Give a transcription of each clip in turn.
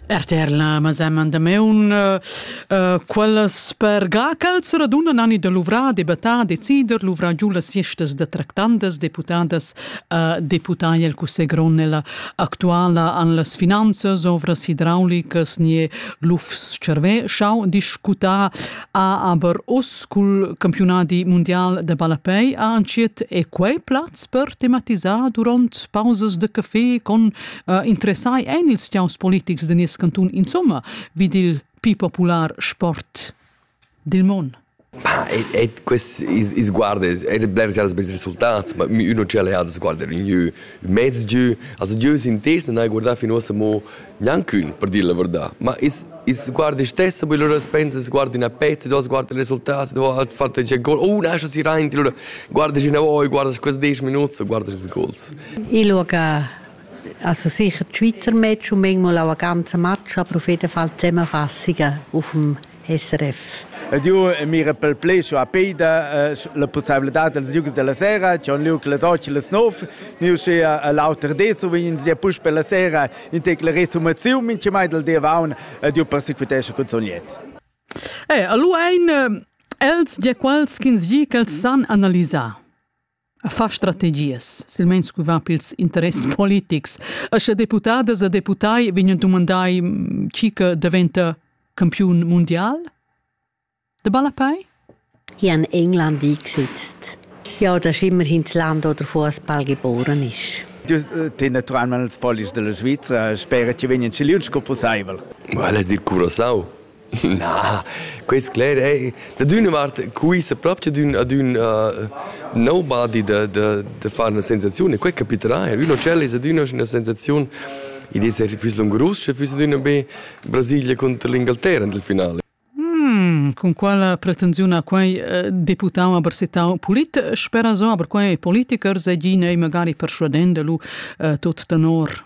Erter la mesemma damaun uh, quellas spergà ch'els radunan ani da luvrar, debattar, decider, luvrar giu las siestas da tractandas deputadas uh, deputai el cussegl grond nella actuala an las finanzas, ovras idraulicas, nie lufs-cervè, schau discutar ha aber uss cul campiunadi mundial de ballapei ha entschiet e quei plaz per tematisar duront pausas de café con uh, interessai ein ils tiaus politics de nies cantun insomma vid il più popular sport dil mon. Ma e, e quest is, is guarda è bler als bei resultats ma uno c'è le ha guarda in jeu mezz jeu also jeu sind das und guarda fin ossa mo Gnanchün per dir la verdà, ma i's i's guarda i's stessa be, lura pensa, i's guarda üna pezza, duos guardan i resultats, duos fan taglia gol, oh, nascha si rainti, lura guardas inavoi, guardas quels desch minuts e guardas ils gols. Ich schaue also sicher Twitter-Match und manchmal auch eine ganze Match, aber auf jeden Fall Zusammenfassungen auf dem SRF. Ed io mira pel plü su a Pida uh, la pussabilità dels liugs della sera, c'è un liug las 8 e las 9, io sü all'auter di, so vegn sia puspe la sera in tec la resumazione, in ce mai del dia vaun, ed io persequitesce cun son liez. Eh, allora ein els ja quals ch'ins gi ch'els san analisar. a far strategias, silmeins cu va pils interess politics. E sche deputadas e deputai vegnan dumandai mm, chi che daventa campiun mundial? De Ballapei? Ich habe in England eingesetzt. Ja, das ist immerhin das Land, wo der Fußball geboren ist. Du tei naturalment els polis della Svizzera, spera che vegnan siliuns co possibel. Well es dir Curaçao. Na, quest cler è dad üna vart quisa propcha d'ün ad ün uh, nobody da, da, da far una sensaziun e quai capiterà er. Ün hotel es adüna üna sensaziun ed es er füss lungurus sche füss adüna be Brasilia contra l'Ingalterra nel finale. Hmm, con quala pretensiun ha quai eh, deputau a Barsetau polit? Spera so, aber quai politichers e gine magari persuadende lu eh, tot tenor.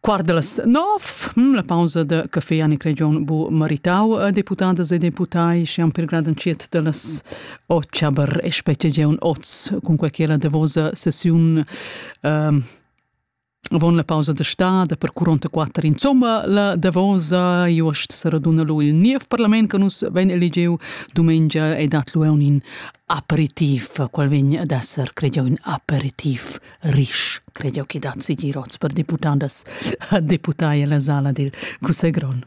Quart de las nov, hm, la pausa de café Annick Region bu maritau a deputadas e deputai siam per grad unciet de las ochaber e specie geun oz cun quei la davosa sessiun ehm, Avon la pausa de stad per curonta quatter insomma la davosa jost saraduna lu il niev parlament che nus ven eligiu dumengia e dat lu un in aperitif qual vegn ad esser credio in aperitif rich, credi che dat sigir oz per deputadas deputai alla sala dil cussegron.